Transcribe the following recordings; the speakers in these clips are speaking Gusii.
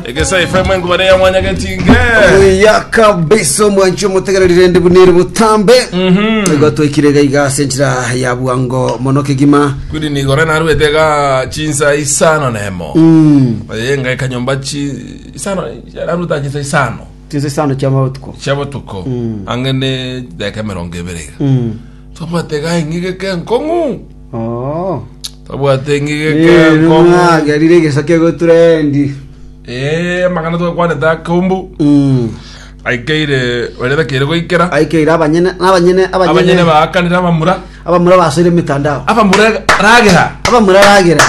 Egesa FM enkuba ne ya mwanya getinge. ya kabisa omwanchi omotegererire ndi bunere botambe igo twekire gaiga ase enchira ya bwango mono kegima Kuri ni gore na ruete ga chinsa isano nemo. Mm. Oye ngai kanyomba chi isano na ruta chinsa isano. tinse isano chiamabotuko Chabo tuko. Mm. Ange ne deke merongo ebere. Mm. Tomate ga ingige ke nkongu. Oh. Twabwate engige Nere enkong'u. mwagerire egeso kegotura endi. Eh, amang'ana twakwanete akombu. Mm. Aikeire baria takeire goikera. Aikeire abanyene abanyene Abanyene abanyene baakanire abamura. abamura basoire emitandao. Abamura ragera. abamura ragera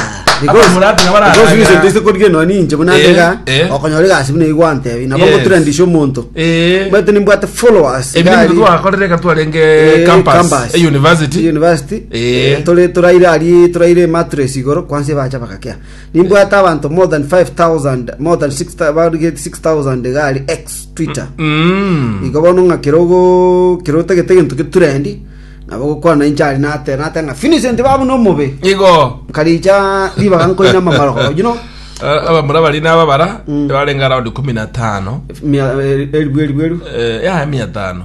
Abamura atiga bararagera. korige noni inche buna Eh, ndega eh. okonyora egasi buna igwantebi nabo Yes. ngotura ndisha omonto Eh. bwete nimbwate followers Ebinto gari, twakorire ka twarenge eh, campus, campus. e university. university Ee, tore toraire arie toraire emattress igoro kwansie bacha bagakea nimbwate abanto more than 5000 more than 6000 barige 6000 iga ari x twitter Mm. igo bono ng'a kerogo kerotagete gento geturendi nabo gokwana inche ari nate nate ng'a Vincent babu no mobe igo karicha ribaga nkoina mamaroko you know Eh, abamura bari nababara Mm. barenge around kumi na tano mia eh, elbu elbu elbu Eh, ya mia tano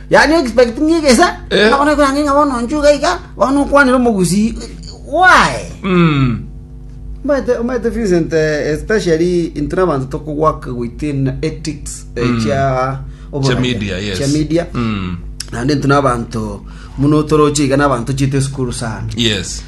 Yani you expect ng'a egesa Eh. ng'a bono ekorang'e ng'a bono nchuga iga bono okwanire omogusii why Omanyete omanyete Vincent eh, especially intwe nabanto tokogwaka goita in ethics eh, Mm. chia oboraia, Chia media, yes. chia media Mm. naende intwe nabanto muno toroche iga nabanto chiete esukuru sana Yes.